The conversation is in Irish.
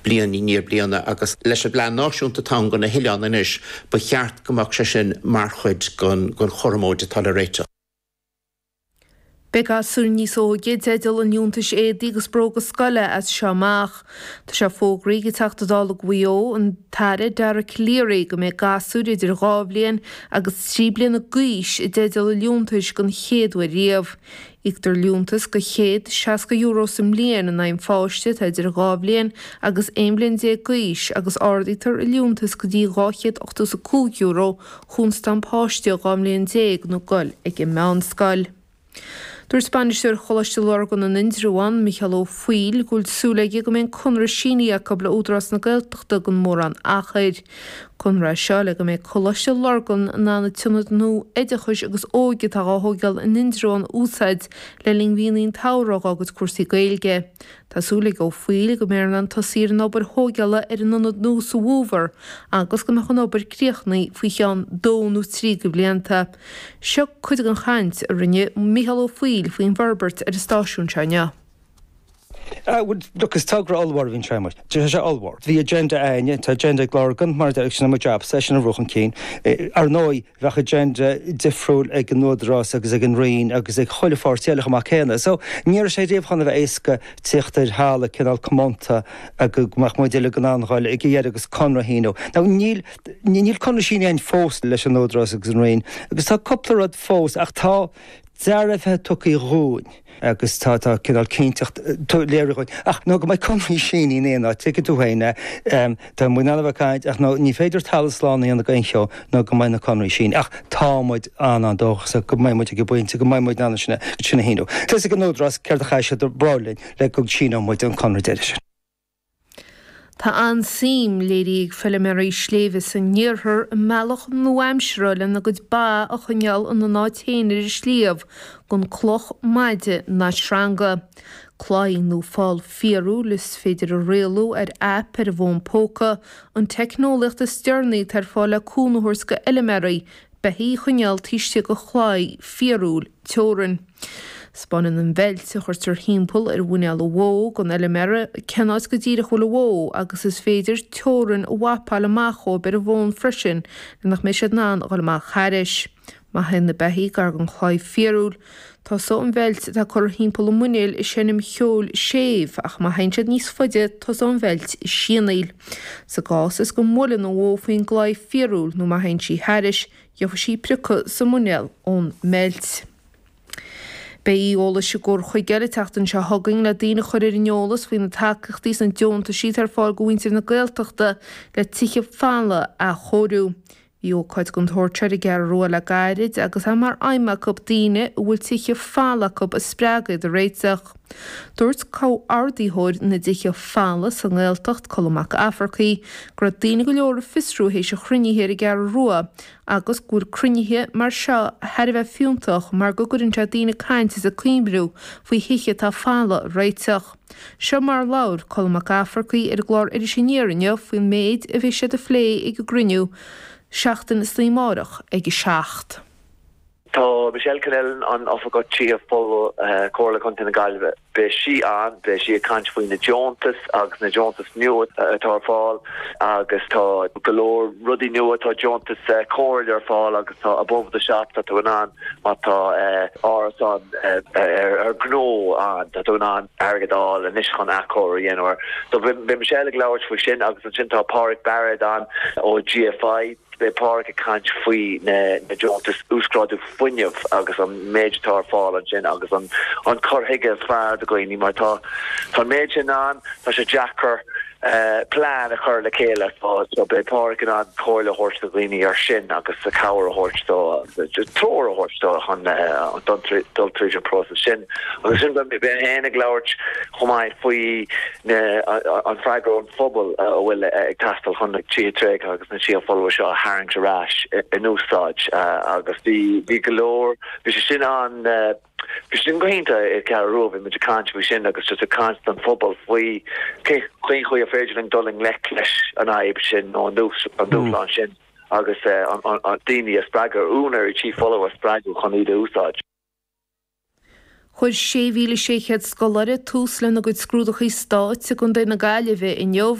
Bliain i ndiaidh bliana agus leis an bPlean Náisiúnta atá ann do na hOileáin anois, ba cheart go mbeadh sé sin mar chuid den chúram mór atá le réiteach. Beidh gasúir níos óige i dteideal an liúntais éadaí agus bróga scoile as seo amach. Tá sé fógraithe ag Teachta Dála Mhaigh Eo, an tAire Dara Calleary, go mbeidh gasúir idir dhá bhliain agus trí bliana d'aois i dteideal an liúntais don chéad uair riamh. Íoctar liúntas go €160 sa mbliain in aghaidh an pháiste atá idir dhá bhliain agus aon bhliain déag d'aois agus ardaítear an liúntas go dtí €285 chúns tá an páiste dhá bhliain déag nó ag goil ag an meánscoil. Dúirt Bainisteoir Choláiste Lurgan in Indreabhán, Micheál Ó Foighil, go bhfuil súil aige go mbeidh an conradh sínithe acu le Údarás na Gaeltachta gan mórán achair. Conradh seo le go mbeidh Coláiste Lurgan in ann an t-ionad nua oideachais agus óige atá dhá thóigéal in Indreabhán a úsáid le linn mhíonna an tsamhraidh agus cúrsaí Gaeilge. Tá súil ag Ó Foighil go mbeifear in ann tosaí ar an obair thóigéala ar an ionad nua sa bhFómhar agus go mbeadh an obair críochnaithe faoi cheann dó nó trí go bhlianta. Seo cuid den chaint a rinne Micheál Ó Foighil faoin bhforbairt ar an stáisiún seo inniu. Look, is togra ollmhór a bhíonn sé amuigh. Tá sé ollmhór. Bhí agenda againne, tá agenda ag Lurgan, mar sin sin mo jab, é sin a bhrú chun cinn. Ar ndóigh, bheadh agenda difriúil ag an Údarás agus ag an Roinn agus ag chuile pháirtí eile chomh maith céanna. So ní raibh sé riamh chun a bheith éasca tíocht ar thalamh cineál comónta go mbeadh muid uilig in ann a ghabháil ag a dheireadh agus conradh a shíniú. Now níl níl conradh sínithe againn fós leis an Údarás agus an Roinn agus tá cúpla rud fós ach tá dearbhuithe tugtha dhúinn. agus tá tá cineál cinnteacht léirithe dhúinn. Ach nó go mbeidh conraí sínithe in aon áit, tuigfidh tú féin é, tá muid in ann a bheith ag caint ach nó ní féidir talamh slán a dhéanamh go aon cheo nó go mbeidh na conraí sínithe. Ach tá muid an- an-dóchasach go mbeidh muid ag an bpointe go mbeidh muid in ann sin a shíniú. Tá a fhios ag an Údarás céard a chaithfidh siad a rá linn le go síneodh muid an conradh deiridh sin. Tá an-suim léirithe ag feiliméaraí sléibhe sa n-iarthar i mbealach nua-aimseartha lena gcuid ba a choinneáil ina n-áit féin ar an sliabh, gan cloch, maide ná sreanga. Claí nó fál fíorúil is féidir a rialú ar aip ar an bhfón póca, an teicneolaíocht is deireanaí atá ar fáil le cúnamh a thabhairt go fheiliméaraí beithígh a choinneáil taobh istigh go chlaí fíorúil teorann. 'Spáineann an bheilt, a chuirtear thimpeall ar mhuinéal an bhó, don fheiliméara, cén áit go díreach a bhfuil an bhó agus is féidir teorainn a mhapáil amach dhóibh ar an bhfón freisin le nach mbeidh siad in ann a dhul amach thairis. Má théann na beithígh gar don chlaí fíorúil. Tosóidh an bheilt atá curtha timpeall a muiníl ag seinm ceol séimh, ach má théann siad níos faide tosóidh an bheilt ag sianaíl. Sa gcás is go mbuaileann an bhó faoin gclaí fíorúil nó má théann sí thairis, gheobhaidh sí priocadh sa muinéal ón mbeilt. Beidh oíche eolais i gCor na Móna an tseachtain seo chugainn le daoine a chur ar an eolas faoi na tacaíochtaí is na deontaisí atá ar fáil go mhuintir na Gaeltachta le tithe folmha a athchóiriú. Bhí ócáid den tsórt seo ar an gCeathrú Rua le gairid agus é mar aidhm acu daoine a bhfuil tithe folmha acu a spreagadh iad a réiteach. Dúirt comhordaitheoir na dtithe folmha sa nGaeltacht, Colm Mac Fhearchair, go raibh daoine go leor ag fiosrú théis an chruinnithe ar an gCeathrú Rua agus go bhfuil cruinnithe mar seo thar a bheith fiúntach mar go gcuireann sé daoine ag caint is ag cuimhniú faoi thithe atá folamh a réiteach. Seo mar a labhair Colm Mac Fhearchair ar an gclár Iris Aniar inniu faoin méid a bheidh siad a phlé ag an gcruinniú seachtain is an lá amárach ag a 7. Tá Michelle Connellan, an tOifigeach Tithe Folmha, Comhairle Contae na Gaillimhe, beidh sí ann, beidh sí ag caint faoi na deontais agus na deontais nua atá ar fáil agus tá go leor rudaí nua, tá deontais comhairle ar fáil agus tá above the shop, tá tú in ann má tá árasán ar ghnó ann, tá tú in ann airgead a fháil anois chun athchóiriú a dhéanamh. So beidh Michelle ag labhairt faoi sin agus ansin tá Páraic Barrett ann ó GFI. Beidh Páraic ag caint faoi na deontais uasghrádú fuinnimh agus an méid atá ar fáil ansin agus an cur chuige is fearr do dhaoine mar tá an méid sin ann, tá sé deacair. plean a chur le chéile. So beidh Páraic in ann comhairle a thabhairt do dhaoine ar sin agus cabhair a thabhairt dóibh, treoir a thabhairt dóibh chun dul tríd an próiseas sin. Agus ansin beidh mé fhéin ag labhairt chomh maith faoi an freagra ón phobal a bhfuil ag teastáil chun na tithe tréigthe agus na tithe folmha seo a tharraingt ar ais in úsáid agus bhí go leor, bhí sé sin an, Bhí sin go hiontach ar an gCeathrú Rua, bhí muid ag caint faoi sin agus just ag caint don phobal faoi cén chaoi ar féidir linn dul i ngleic leis an fhadhb sin nó an dúshlán sin agus daoine a spreagadh, úinéirí tí folamh a spreagadh chun iad a úsáid. Chuir 6,600 scoláire tús lena gcuid scrúdaithe Stáit i gContae na Gaillimhe inniu.